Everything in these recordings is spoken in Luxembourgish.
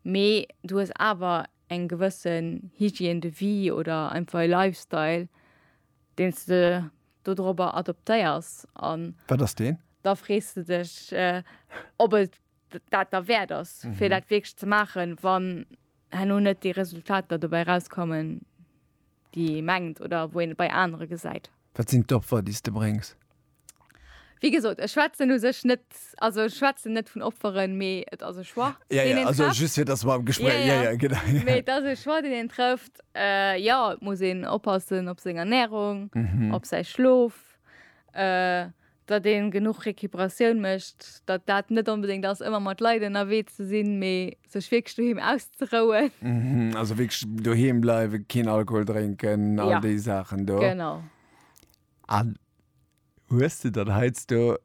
Mee du hues awer eng gewëssen Hygiène de vie oder einfach e Lifestyle, deen s de dodrobber adoptéiers. An. Wat ass deen? Da frees de dech, ob et dat derwäert ass, fir dat wierklech ze maachen, wann herno net déi Resultater dobäi erauskommen, déi ee mengt oder wou een et bei anere gesäit. Wat sinn d'Opfer, déi s de bréngs? Wéi gesot, ech schwätzen u sech net, also ech schwätzen net vun Opferen, mee et ass e Choix, Ja, deen ja, een also trëfft. just fir, dass mer am Gespräch, ja, ja, genau, ja. Mee et ass e Choix, deen een trëfft. Jo, et muss een oppassen op seng Ernärung, op säi Schlof, datt ee genuch Recuperatioun mécht, datt dat net onbedéngt ass, ëmmer mat Leit ënnerwee ze sinn, mee sech wierklech doheem auszerouen. Also wierklech doheem bleiwen, keen Alkohol drénken, all déi Saachen do. Genau. An hues de dann heiansdo,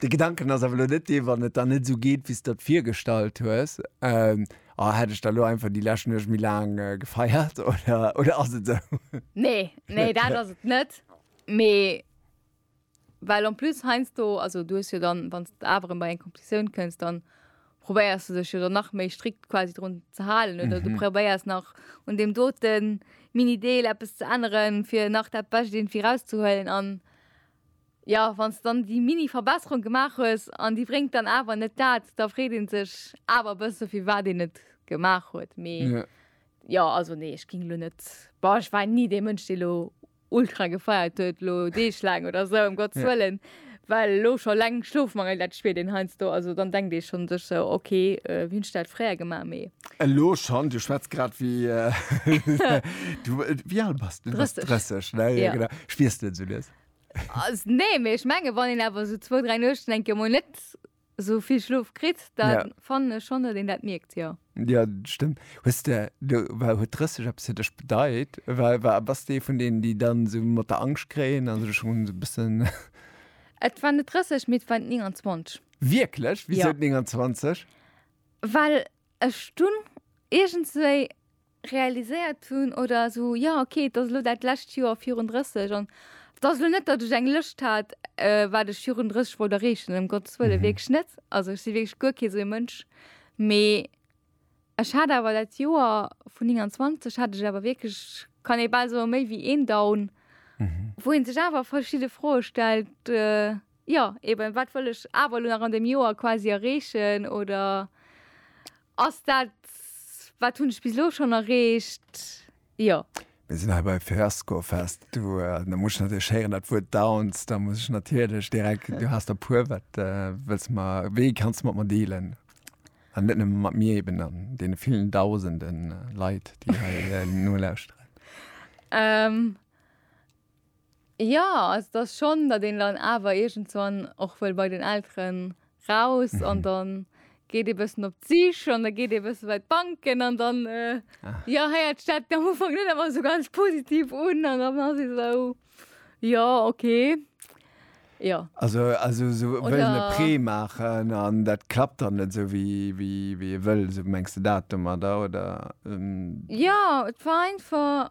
de Gedanken ass awer elo net dee, wann et dann net esou geet, wéi s de der et virgestallt hues, oh, hätt ech da elo einfach déi lescht Nuecht méi laang gefeiert? Oder ass et esou? Nee, nee, dat ass et net. Mee well en plus heiansdo, also du hues jo dann, wann s de awer erëm bei eng Conclusioun kënns, dann. probéiers du dech jo dann nach méi strikt quasi drun ze halen oder mhm. du probéiers nach un dem doten Minideel Appppes ze änneren, fir nach dat Bëcht irgendwie rauszuhuelen an ja wann es dann die mini Verbesserung gemacht hues an die bringt dann aber net dat da freet den sech aber bës so viel war den net gemacht huet me ja. ja also nee ich ging lo net bar ich war nie de Mënsch de lo ultra gefeiert huet lo Deeg laang oder esou ëm Gottes Wëllen, well elo scho eleng Schlofmangel dat spiert een heiansdo, also dann denkt ee schonn sech esou ok wéi hunn ech dat fréier gemaach, mee. Elo schonn, du schwätz grad wéi du, wéi al bass de? Du bass 30. 30, ne? Jo, genau. Spiers de et esou lues? Nee, mee ech mengen, wann een awer esou zwou, dräi Nuechten eng Kéier emol net esou vill Schlof kritt, da ja. fannen ech schonn, datt een dat mierkt, jo. Ja, stëmmt. Hues de, du, war, huet 30 eppes fir dech bedeit? War, war, bass de vun deenen, déi dann so mat der Angscht kréien an sech schon so bëssen. Et war net 30, mee et war 29. Wierklech? Wéi ja. 29? Well ech dunn iergendswéi realiséiert hunn oder esou, jo ok, et ass elo dat lescht Joer virun 30 an et ass elo net, datt ech eng Lëscht hat, wat ech virun 30 wollt erreechen, ëm Gottes Wëlle, wierklech net. Also ech si wierklech guer kee sou ee Mënsch. Mee ech hat awer dat Joer vun 29 hat ech awer wierklech, kann ee bal soe méi wéi een Down, wou ee sech awer verschidde Froe stellt, jo eeben, wat wëll ech awer elo nach an deem Joer quasi erreechen oder Ass dat, wat hunn ech bis elo schonn erreecht? Jo. Mir sinn hei bei Fiasco Fest. Du, da muss ech natierlech héieren, dat Wuert Downs. Da muss ech natierlech direkt, du has der puer, wat wëlls de mer, wéi kanns de mat mer dealen? An net nëmme mat mir eben, an deene villen Dausende Leit, déi hei nolauschteren. Jo, also et ass schonn, datt een dann awer iergendswann och wëll bei den Elteren raus an dann geet ee bëssen op d'Sich an da geet ee bësse bei d'Banken an dann, jo, héiert sech dat am Ufank net ëmmer esou ganz positiv un an dann ass ee esou, jo, okay, jo. Also esou wëllen e Prêt maachen an dat klappt dann net esou wéi ee wëll, esou mengs de dat domadder, oder? Jo, et war einfach.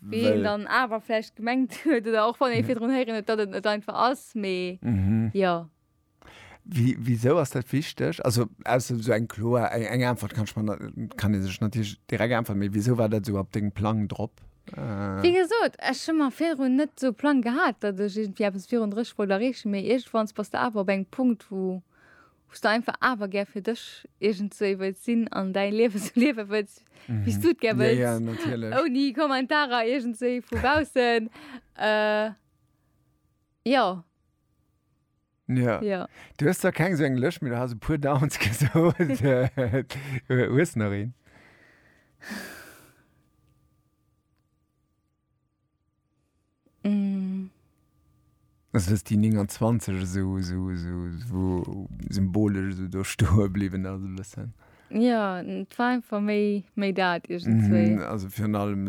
Wéi een dann awer vläicht gemengt huet, oder och wann ee virdrun héieren huet, datt et net einfach ass, mee jo. Wisou ass dat wichteg? Also ausser esou eng kloer, eng Äntwert kann ech mer, kann ee sech natierlech direkt äntweren, mee wisou war dat esou op dengem Plang drop? Wéi gesot, ech hu mer virdrun net esou Plang gehat, datt ech iergendwéi eppes virun 30 wollt erreechen, mee iergendwanns bass de awer op engem Punkt, wou. Wous de einfach awer gär fir dech iergend sou ee wëlls sinn an däi Liewe sou liewe wëlls, wéi s du et gär wëlls. Ja, ja, natierlech. Ouni Kommentarer iergend sou ee vu baussen. Jo. Jo. Jo. Du hues zwar keng sou eng Lëscht, mee du has e puer Downs gesot. Hues nach een? Mm. Also dass die 29 so, so, so, so symbolisch so do stoe blieben also bisschen. Ja, war einfach méi méi dat irgendwie. Mm, also für allem